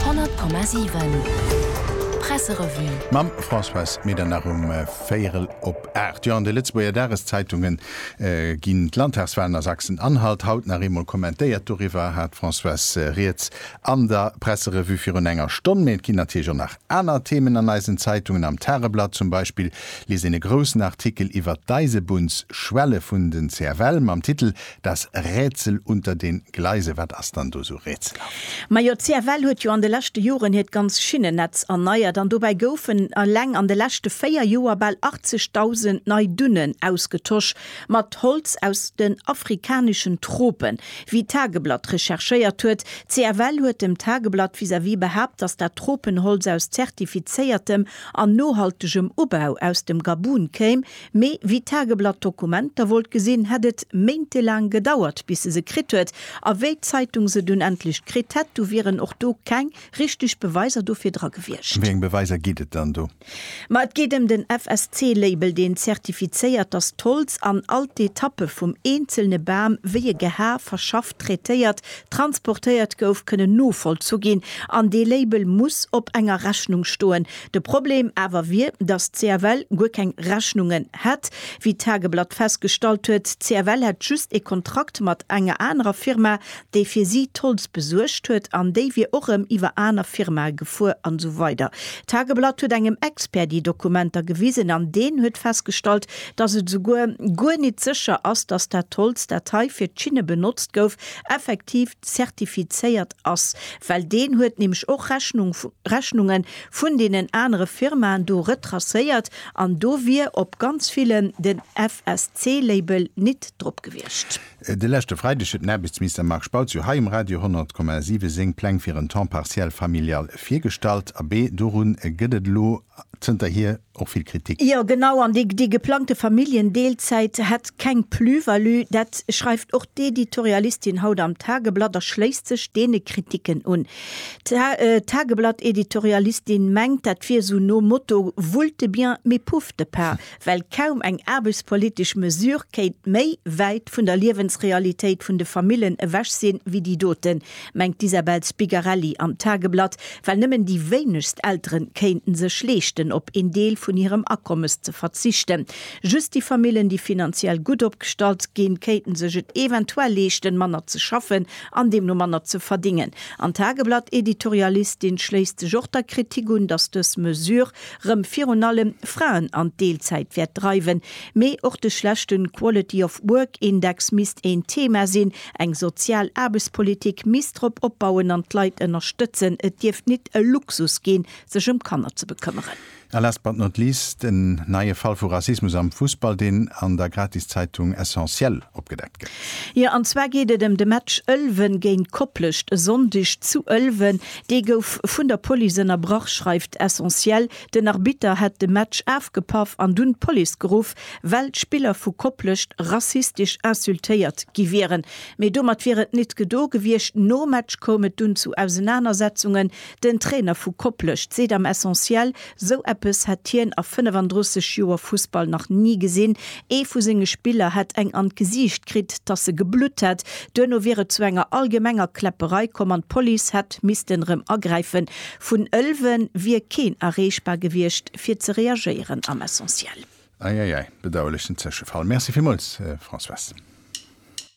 100,7 Presserevue. Mam Françoise Medernach um véierel op aacht. Jo, an de Lëtzebuerger Dageszeitungen ginn d'Landtagswalen a Sachsen-Anhalt haut nach eemol kommentéiert. Doriwwer hat d'Françoise rieds an der Presserevue virun enger Stonn. Mee et ginn natierlech och nach aner Themen an eisen Zeitungen. Am Tageblatt zum Beispill liest een e groussen Artikel iwwert d'Eisebunnsschwelle vun den CFL mam Titel Das Rätsel unter den Gleisen, wat ass dann do sou rätselhaft? Majo, d'CFL huet jo an de leschte Joren hiert ganz Schinnennetz erneiert an dobäi goufen eleng an de leschte 4 Joer bal 80.000 nei Dunnen ausgetosch mat Holz aus den afrikaneschen Tropen, wéi d'Tageblatt recherchéiert huet. D'CFL huet dem Tageblatt vis-à-vis behaapt, dass dat Tropenholz aus zertifizéiertem an nohaltegem Ubau aus dem Gabun kéim, Mee wéi d'Tageblatt d'Dokumenter wollt gesinn, hätt et méintelaang gedauert, bis se se kritt huet. A wéi d'Zeitung se dunn endlech kritt hätt, du wieren och do keng richteg Beweiser dofir dra gewiescht. Wéi eng Beweiser geet et dann do? Ma et geet ëm den FSC-Label, deen zertifizéiert, datt d'Holz an all d'Etappe vum eenzelne Bam, wéi e gehae, verschafft, traitéiert, transportéiert gouf, kënnen novollzu ginn. An dee Label muss op enger Rechnung stoen, De Problem awer wier, datt d'CFL guer keng Rechnungen hätt. Wéi d'Tageblatt festgestallt huet, d'CFL hätt just ee Kontrakt mat enger anerer Firma, déi fir si d'Holz besuergt huet, an déi wier och rëm iwwer aner Firmae gefuer an esou weider D'Tageblatt huet engem Expert déi Dokumenter gewisen an deen huet festgestallt, datt et esouguer guer nit sécher ass, datt dat Holz, dat hei fir d'Schinne benotzt gouf, effektiv. zertifizéiert ass, well deen huet nämlech och Rechnung, Rechnunge vun deenen anere Firmaen do retracéiert an do wier op ganz villen den FSC-Label nit drop gewiescht. De leschte Freideg huet den Aarbechtsminister Marc Spautz jo hei um Radio 100,7 seng Pläng fir en Temps partiel familial virgestallt. Abee, dorun gëtt et elo zënterhier och vill Kritik. Jo, genau, an déi geplangte Familljendeelzäit hätt keng Plus-value, dat schreift och d'Editorialistin haut am Tageblatt a schléisst sech deene Kriticken un. D'Tageblatt-Editorialistin mengt, dat wier esou nom Motto Voulte de bien, mais pouf de pas, well kaum eng aarbechtspolitesch Mesure kéint méi wäit vun der Liewensrealitéit vun de Famillen ewech sinn, wéi déi doten. mengt d'Isabel Spigarelli am Tageblatt, well nëmmen déi wéinegst Eltere kéinte sech leeschten, op een Deel vun hirem Akommes ze verzichten. Just déi Famillen, déi finanziell gutt opgestallt ginn, kéinte sech et eventuell leeschten, manner ze schaffen an deemno manner ze verdéngen. An d'Tageblatt-Editorialistin schléisst sech och der Kritik un, datt dës Mesure rëm virun allem Fraen an d'Deelzäit wäert dreiwen. Mee och de schlechte Quality of Work-Index misst een Thema sinn, Eng sozial Aarbechtspolitik misst drop opbauen an d'Leit ënnerstëtzen. Et dierft nit e Luxus ginn, sech ëm Kanner ze bekëmmeren. A last but not least, en neie Fall vu Rassismus am Fussball, deen an der Gratiszeitung Essentiel opgedeckt gëtt. Jo, an zwar geet et ëm de Match Ëlwen géint Koplescht e Sonndeg zu Ëlwen. Dee gouf vun der Police ënnerbrach, schreift Essentiel. Den Arbitter hätt de Match afgepaff an dunn d'Police geruff, well d'Spiller vu Koplescht rassistesch insultéiert gi wieren. Mee domat wier et nit gedo gewiescht. Nom Match koum et dunn zu Ausenanersetzungen. Den Trainer vu Koplescht seet am Essentiel, sou eppes hätt hien a 35 Joer Fussball nach ni gesinn. Ee vu senge Spiller hätt eng an d'Gesiicht kritt, dass se geblutt hätt. Duerno wier et zu enger allgemenger Kläpperei komm an d'Police hätt missten erëm agräifen. Vun Ëlwen wier keen erreechbar gewiescht fir ze reagéieren am Essentiel. Eieiei, bedauerlechen Zëschefall. Merci villmools Françoise.